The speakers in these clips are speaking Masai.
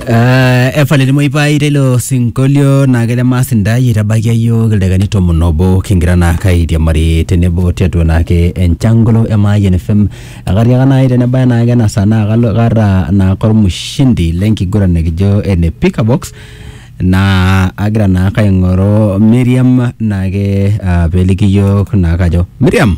Uh, efale limoipai teilo sinkolio naa kejo maas intae eitabaikia iyiook ildaikani tomon obo kingira naa kairiamari tenebo tiatua naake enchangolo e Mayian FM ekatiaka naai tenebaya naake ena saa naa kalo kaata naa kormushindi lenkiguran nikijo ene pickabox naa agira naa kaing'oru Miriam naake uh, peliki iyiook naa kajo Miriam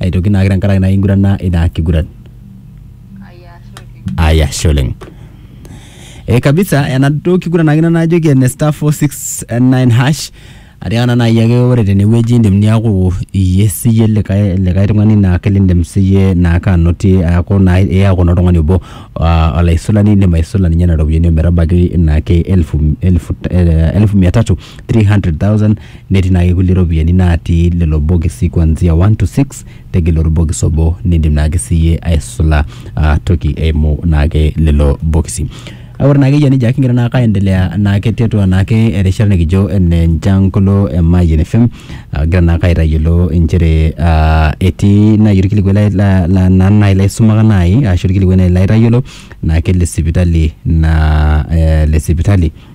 aitoki naake tenkaraki naa ingurana ina kiguran. Aya, ashe oleng. E kabisa enaduo kiguran ake ina najoki ene star 469 hash atiaka naa nai ake ore tenewueji indim niaku iyie siyie likae likae tung'ani naake lindim siyie naake anotie aaku naa iyaku naa oltung'ani obo uh olaisulani indim aisula ninye nena ropiani ometabaiki naake elfu elfu eh elfu mia tatu 300,000 netii naake kulie ropiyiani natii lelo bokisi kuanzia 1 to 6 tegelu orbokis obo nindim naake siyie aisula uh, toki eimu naake lelo bokisi Kake ore naake eyia nejia kigira naake aendelea naake tiatua naake erishata nikijo ene Njankolo e Mayian FM agira naake aitayiolo inchere uh, etii nai orkilikuai lai- la- la- naa nai laisumaka nai ashu orkilikuai nai laitayiolo naake le sipitali na eh, le sipitali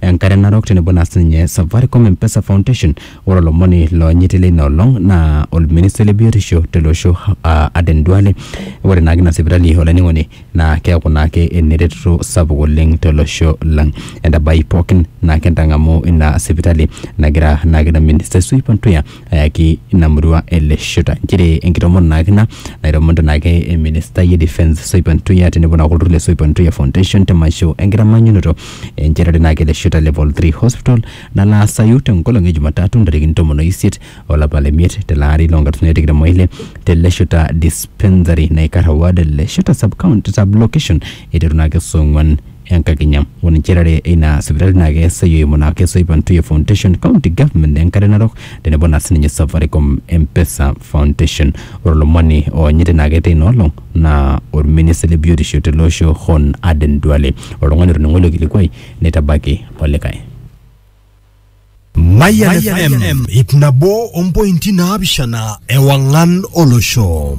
Enkare Narok tenebo naa sininye Safaricom M-Pesa Foundation. Ore olomoni loonyiti leina olong naa olministai le biotisho tele osho aa Aden Duale. Ore naake ina sipitali olainining'oni naa keeku naake eneretoto sapuk oleng tolosho lang. Entabai pookin naake entang'amu ina sipitali nagira naake ina ministai Sue Pantuya ayaki ina murua ele shuta nchere enkitomono naake ina naitomonito naake eministai e defence Soipan Ntuya tenebo naake olturrur le Soipan Ntuya Foundation te masho enkitamanyunoto enchetare naake ele shuta level 3 hospital nalo aasayu tenkolong e Jumatatu ntarikini tomon oisiet olapa le miet tele ari loo nkalifuni are tikitam oile tele shuta dispensary naikarra ward ele shuta sub county sub location eiteru naake saa ong'wan Enkakinya. Ore inchetare eina sipitali naa keesayu eimu naa Kesoipa Ntuye Foundation, County Government Enkare Narok tenebo naa sininye Safaricom M-Pesa Foundation. Ore olomoni oonyiti naa ketii ina olong naa olminista le biotisho tele osho Hon Aden Duale. Oltung'ani otoning'o ilo kilikuai neitabaki olikae. Mayian FM ip nabo ompointi naapishana ewang'an olosho.